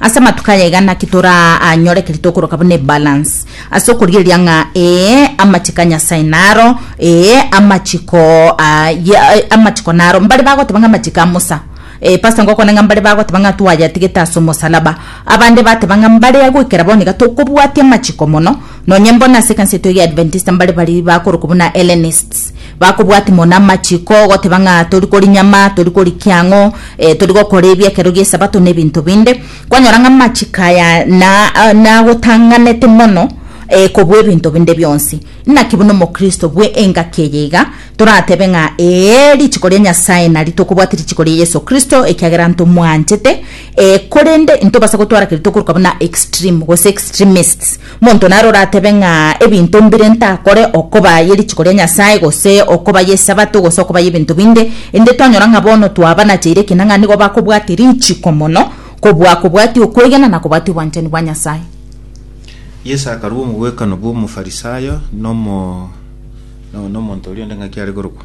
Ase amatuko aya iga naki toranyore ekeri tokoroka buna ebalance ase okorigereria ng'a ee amachiko a Nyasae naro, ee amachiko ah, ya- eh, amachiko naro. Mbare bagoteba ng'a amachiko a Musa, eh, pastor ngokwana ng'a mbare bagoteba ng'a twayatigete ase omosalaba, abande bateba ng'a mbare goikera bono iga tokobwatia amachiko mono, Nonye mbo nase ekanisa yaito egia Adventista mbare baria bakorokwa buna Hellenists, bakobwatia mono amachiko, goteba ng'a tori koria nyama, tori koria kiang'o, eh, tori gokora ebi ekero gi'Esabato na ebinto binde. Kwanyora ng'a amachiko aya na ah, nagotang'anete mono eh, kobua ebinto binde bionsi. Naki buna omokristo bwe engaki eye iga, toratebe ng'a ee, richiko ria Nyasae nari tokobwatia richiko ria Yeso Kristo ekiagera ntomwanchete, Ee, korende intobasa gotwara keria tokoruka buna extreme gose extremists. Monto naro oratebe ng'a ebinto mbire ntakore, okoba ye richiko ria Nyasae, gose okoba y'Esabato, gose okoba y'ebinto binde, inde twanyora ng'a bono twabanacheire ekina ng'a nigo bakobwatia richiko mono kobua kobwatia okwegena na kobwatia obwanchani bwa Nyasae. Yeso akarua omogwekano bw'Omofarisayo na omo- na- na omonto oria onde ng'aki are korokwa.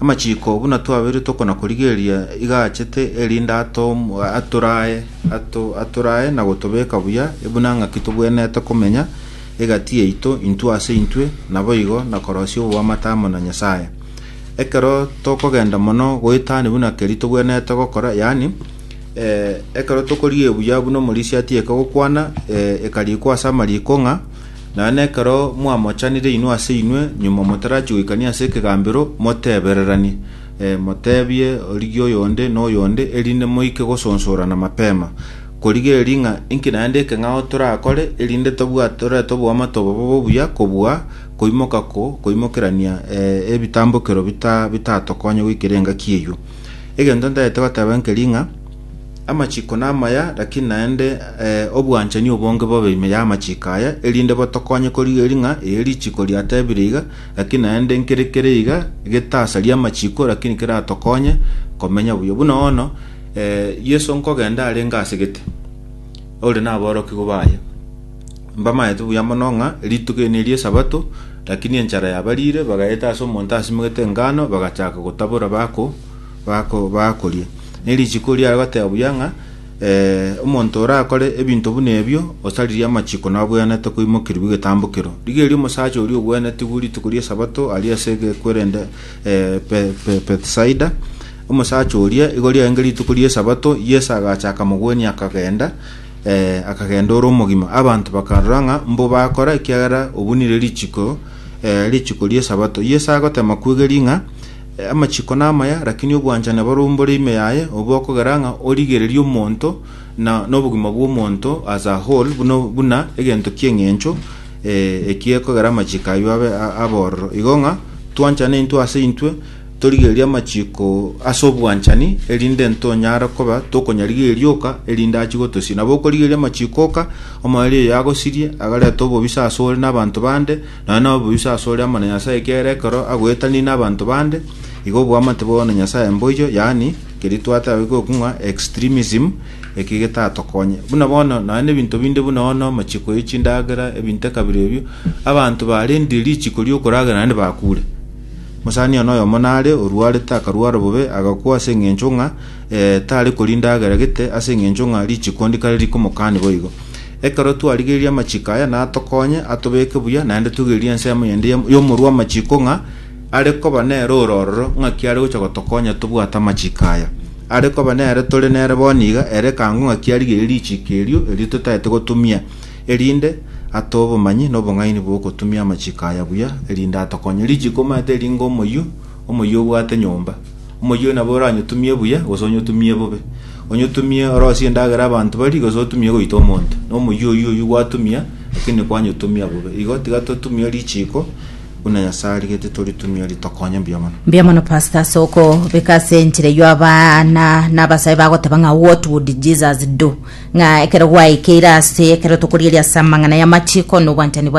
Amachiko buna twabeirwe tokona korigereria iga achete, erinde atom- atorae ato- atorae na gotobeka buya, buna ng'aki tobwenerete komenya egati yaito intwe ase intwe, naboigo na korosia oboamate amo na Nyasae. Ekero tokogenda mono goetani buna keria tobwenerete gokora, yaani eh, ekero tokorigia ebuya buna omorisia atieke gokwana, eh, ekarikwa ase amariko ng'a Naende ekero mwamochanire inwe ase inwe, nyuma motarachie goikania ase ekegambero, motebereranie, eh, motebie origie oyonde na oyonde, erinde moike gosonsorana mapema. Korigia eeri ng'a inki naende eke ng'ao torakore, erinde tobwate torete oboamate obobe obuya kobua koimoka ko koimokerania eh, ebitambokero bita bitatokonye goikera engaki eyio. Egento ntagete goteba nkeri ng'a Amachiko namaya, lakini naende eh, obwanchani obonge bobe ime y'amachiko aya, erinde botokonye korigeria ng'a eye richiko riatebire iga, lakini naende nkere kere iga getasaria amachiko, lakini keratokonye komenya buya. Buna ono eh, Yeso nkogenda arenge ase gete, ore naborokigwa baye. Mbamaete buya mono ng'a rituko eri neri esabato, lakini enchara yabarire, bagaeta ase omonto asimegete engano, bagachaka gotabora bako bako bakorie. Ne richiiko riare goteba buya ng'a eh, omonto orakore ebinto buna ebio osaririe amachiiko nabweanete koimokerigwa egetambokero. Rigeria omosacha oria ogwenetigwe rituko ri'esabato aria ase egekwerende eh, Be- Be- Bethsaida, omosacha oria igo riarenge rituko ri'esabato, Yeso agacha akamogwenia akagenda, eh, akagenda ore omogima. Abanto bakarora ng'a mbo bakora ekiagera obunire richiiko eh, richiiko ri'esabato. Yeso agotema kwegeria ng'a Amachiko namaya, lakini obwanchani barombore ime yaye, obe okogera ng'a origererie omonto na nobogima bw'omonto as a whole buna, buna egento ki'eng'encho eh, eki ekogera amachiko ayio abe a- abororo. Igo ng'a twanchane intwe ase intwe, torigererie amachiko ase obwanchani, erinde ntonyare koba tokonyarigereria oka, erinde achie gotosiria. Nabo okorigereria amachiko oka, omoerio oyo agosirie, agarete obobisa ase ore na abanto bande, Nonya noboiso asore amo na Nyasae ekiagera ekero agoetanire nabanto bande, igo oboamate bwao na Nyasae mboiyo, yaani keria twatae goika ng'a extremism, eki getatokonye. Buna bono nonya nebinto binde buna bono amachiko ye chindagera, ebinto ekabira ebio, abanto barendire richiko riokoragera naende bakure. Mosani one oyomo nare orwarete akarwara bobe agakwa ase eng'encho ng'a eh, tare koria ndagera gete ase eng'encho ng'a richiko ndikare rikomokani boigo. Ekero twarigereria amachiko aya natokonye atobeke buya, naende toigererie ensemo yende y'omorwamachiko ng'a are koba nere ore ororo, ng'aki are gocha gotokonya tobwate amachiko aya. Are koba nere tore nere bono iga, ere ekango ng'aki arigerie richiko erio erio totaete gotumia, erinde atoe obomanyi na obong'aini bw'ogotumia amachiko aya buya, erinde atokonye. Richiko omanyete ring'o omoyio? Omoyio obwate nyomba, omoyio oyo nabo oranyotumie buya gose onyotumie bobe. Onyotumie orosie endagera abanto barie gose otumie goita omonto, na omoyio oyio oyio gwatumia, lakini kwanyotumia bobe. Igo tiga totumie richiiko buna Nyasae arigetie toritumie ritokonye mbuya mono. Mbuya mono pastor ase okobeka ase enchera eyio abana na abasae bagoteba ng'a what would Jesus do? Ng'a ekero gwaikeire ase ekero tokorieria ase amang'ana y'amachiko na obwanchani bwa